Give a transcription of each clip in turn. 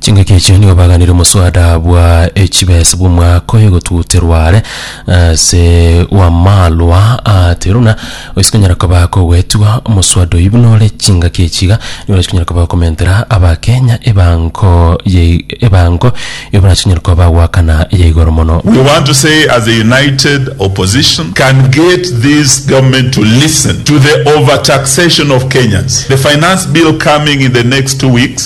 Chingaki echio nigo baganire omoswada bwa echibesa bw'omwaka oye gotuterwa are ase w'amarwa a Teruna, oyio sikonyara koba kogoetigwa omoswada oyio buna ore. Chingaki echi iga nigo chikonyara koba komentera Abakenya ebango ya ebango eyio buna chikonyara koba bagoakana eya igoro mono. We want to say as a united opposition can get this government to listen to the overtaxation of Kenyans. The finance bill coming in the next two weeks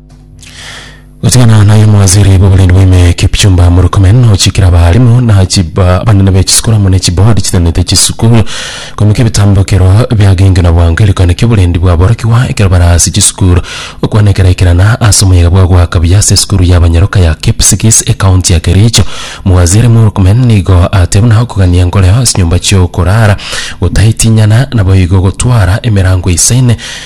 Gotigana naye omowaziri bw'oborindi bwa ime Kipchumba Murkomen nochikire abarimu na chiba abanene be chisukuru amo ne chibodi chitenenete chisukuru komeka ebitambo ekero biagengenwa bwango egerekano ki'oborendi bwaborokigwa ekero bare ase chisukuru gokwana ekerekerana ase omoyega bwa goaka buya ase esukuru ya abanyaroka ya Kipsigis ekaunti ya Kericho. Omowaziri Murkomen nigo atebire buna okogania nkoreo ase chinyomba chi'okorara, gotaitinyana naboigo gotwara emerango isaine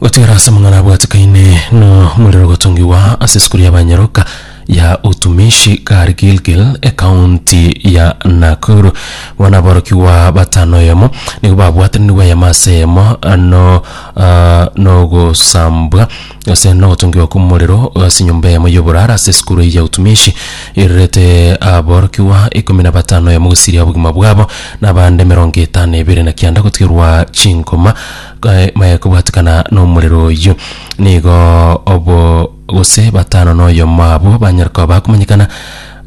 Gotigara ase amang'ana abwatekaine nomorero gotongigwa ase esukuru ya banyaroka ya utumishi kare Gilgil ekaunti ya Nakuru. Bono aborokigwa batano eyemo nigo babwatanire eyemo ase eyemo ano ah, nogosambwa Gose nogotongigwa kw'omorero ase enyomba eyemo y'oborara ase esukuru eye ya utumishi, eirerete aborokigwa ikomi na batano eyemo gosiria obogima bwabo, na abande emerongo etano na ebere na kianda gotigerwa chinkoma kae- mae kobwatekana nomorero oyio. Nigo obo gose batano na oyomo abo banyare koba bakomanyekana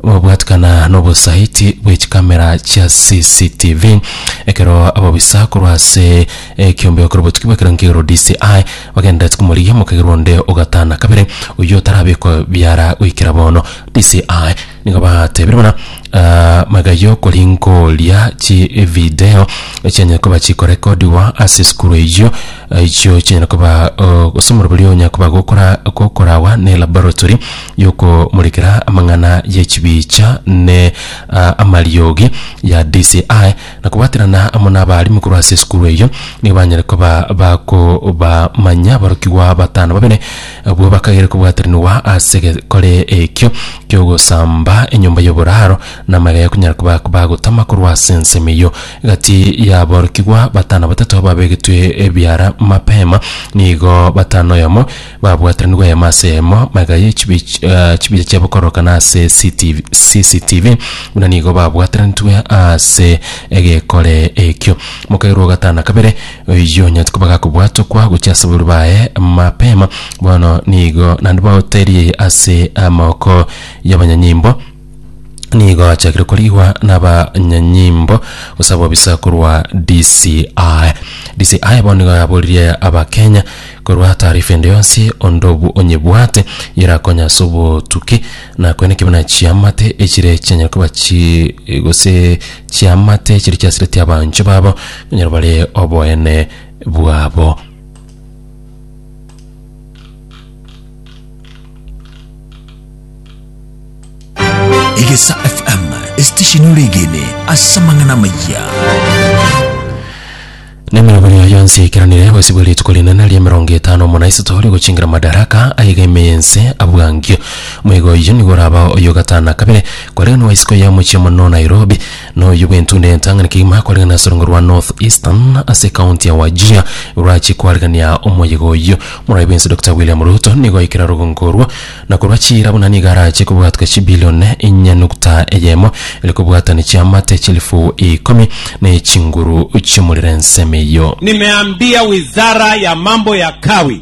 Babwatikana n'obosaiti bwe chikamera chia CCTV ekero ababisa korwa ase ekiombeo kero botuki bw'ekero nkegoro DCI bagendereti komorigia omokagerwa onde ogatana kabere oyio otarabekwa biara goikera bono. DCI nigo batebire buna ah, magega y'okori nkoria chi evideo echianyare koba chikorekodiwa ase esukuru eyio echio chinyare koba oh, gose omorobori oyo onyare koba gokora gokorawa ne laboratory y'okomorekera amang'ana y'echibicha ne a, amariogi ya DCI na kobwaterana amo n'abarimu korwa ase esukuru eyio, nigo banyare koba bakobamanya aborokigwa batano babere abwo bakagere kobwaterinigwa ase egekore ekio ki'ogosamba enyomba y'oboraro na amagega ya konyara koba bagotama korwa ase ensemo eyio. Egati y'aborokigwa batano batato ababegetwe ebiara mapema nigo batano oyomo Babwataniwe eyemo ase eyemo, magega ye chibi- chibicha chiabo korokana ase CTV CCTV, buna nigo babwatanetwe ase egekore ekio. Mokairwa o gatano na kabere, oyio onyarete koba gakobwatokwa gochia ase abarwori baye mapema, bono nigo naende baoterie ase amaboko y'abanyanyimbo, nigo achakire korigwa n'abanyanyimbo gose abobisa korwa DCI. DCI bono nigo yaboririe abakenya korwa taarifa ende yonsi onde obu onyebwate yerakonya ase obotuki na koenda ekibe na chiamate echire chianyare koba chi gose chiamate chiri chiasireti abanchwa babo onyare bare oboene bwabo. Egesa FM esitesheni oregene ase amang'ana amaya. nemirobari yayo yonsi eikeranire gwesibwa rituko rinene ria emerongo etano omona isato rigochingira madaraka ayegeme yense abwangio moigo oyio nigo oraba oyo gatana kabere korende nwaisiko ya omochie omonene o nairobi Noyo bw'entunda y'entang'ani kegima koregana ase orongo rwa North Eastern ase ekaunti ya Wajir igoro achie koaregania omoyega oyio. Moraia bwensi Dokita William Ruto nigo aikera rogongo orwo na korwa chiira buna nigo arachie kobwatwa chibilioni inye nukta eyemo ere kobwatania chiamate chilifu ikomi na echinguru chi'omorero ensemo eyio. Nimeambia wizara ya mambo ya kawi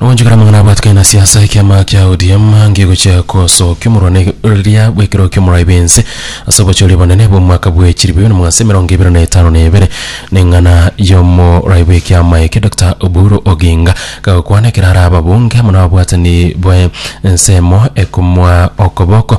Nogonchokera amang'ana abwatokana na siasa ekiama kia ODM ngegochia kosokia omorwani oria bwekero ki'omorai bwense ase obochori obonene bw'omwaka bwa echiri bibere na magana ase emerongo ebere na etano na ebere neng'ana y'omorai bw'ekiama eke Doctor Oburu Oginga kagokwana ekero are ababunge amo nababwatani bwe ensemo ekomwa okoboko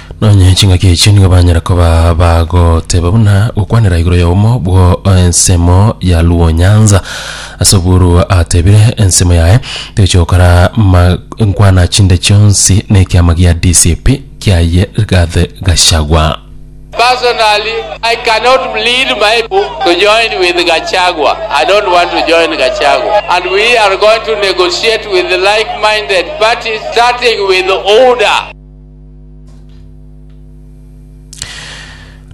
Nonye chingaki echi nigo banyara koba bagoteba buna gokwanera igoro ya omo bwo ensemo ya Luo Nyanza. Ase oburu atebire ensemo yaye toichi gokora ma- nkwana chinde chionsi na ekiama gia DCP kiaye Rigathi Gachagua. Personally, I cannot lead my people to join with Gachagua. I don't want to join Gachagua. And we are going to negotiate with like-minded parties, starting with UDA.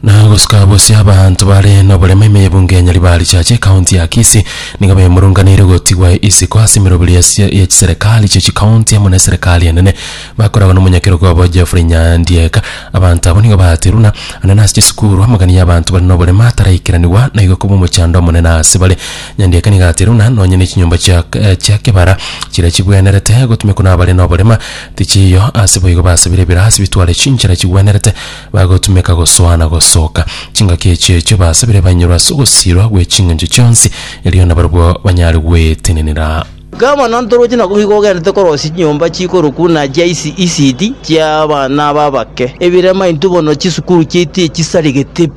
Na gosuka bose abanto bare noborema ime y'ebunge ya Nyaribari Church ekaunti ya Kisii nigo bemurunganeire gotigwa isiko ase emeroberi ya sia- ya chiserekari chie chikaunti amo na eserekari enene bakoragwa na omonyakerogo obo Geoffrey Nyandieka abanto abwo nigo baaterwa na na nase chisukuru amagana ya abanto bare noborema ataraikeraniwa na igo koba omochando omonene ase bare Nyandieka nigo aterwa buna nonye ne chinyomba chia eh chia kebara chiria chibwenerete gotumekwa nabare noborema Tichiyo ase boigo basibire ebirasi bitware chinchera chigwenerete, bagotumeka gosoa na gosoka. Chingaki echi echio basibire banyorwe ase ogosiirwa gwe ching'encho chionsi, erio nabarobwo banyare gwetenenera. Iga mono ntoroche na goika ogenderete korosia chinyomba chikorokwa na chia isi isidi chi'abana b'abake, ebirema intwe bono chisukuru chiaito echisaregete.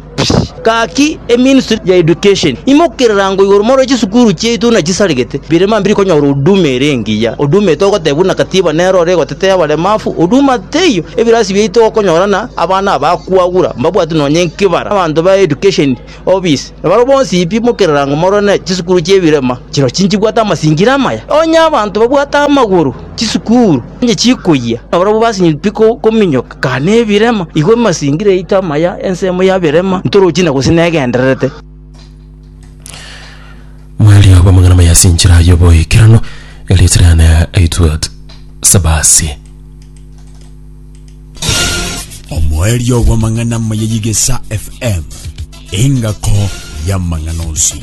Gaki eministry ya education imokerera ngo igoro more chisukuru chiaito buna chisaregete, birema mbiri konyora huduma ere engiya. Huduma eye togoteba buna katiba nero ore egotetea abaremafu, huduma teiyo. Ebirasi biaito okonyora na abana aba kwagura mbabwati nonya enkibara. Abanto ba education office nabaro bonsi pi mokerera ngo morore ne chisukuru chia ebirema chiro chinchibwate amasingira amaya. Onye abanto babwate amagoro chisukuru onye chikoyia, nabarobwo basinye pi kominyoka. Kaa nebirema, igwa emasingire yaito amaya, ensemo ya birema, ntorochi na gose negendererete. Mariogo amang'ana maya ase enchera y'oboikeranu, erichirane aitwe Sebasi. omoerio bw'amang'ana amaya y'egesa fm engako y'amang'ana onsi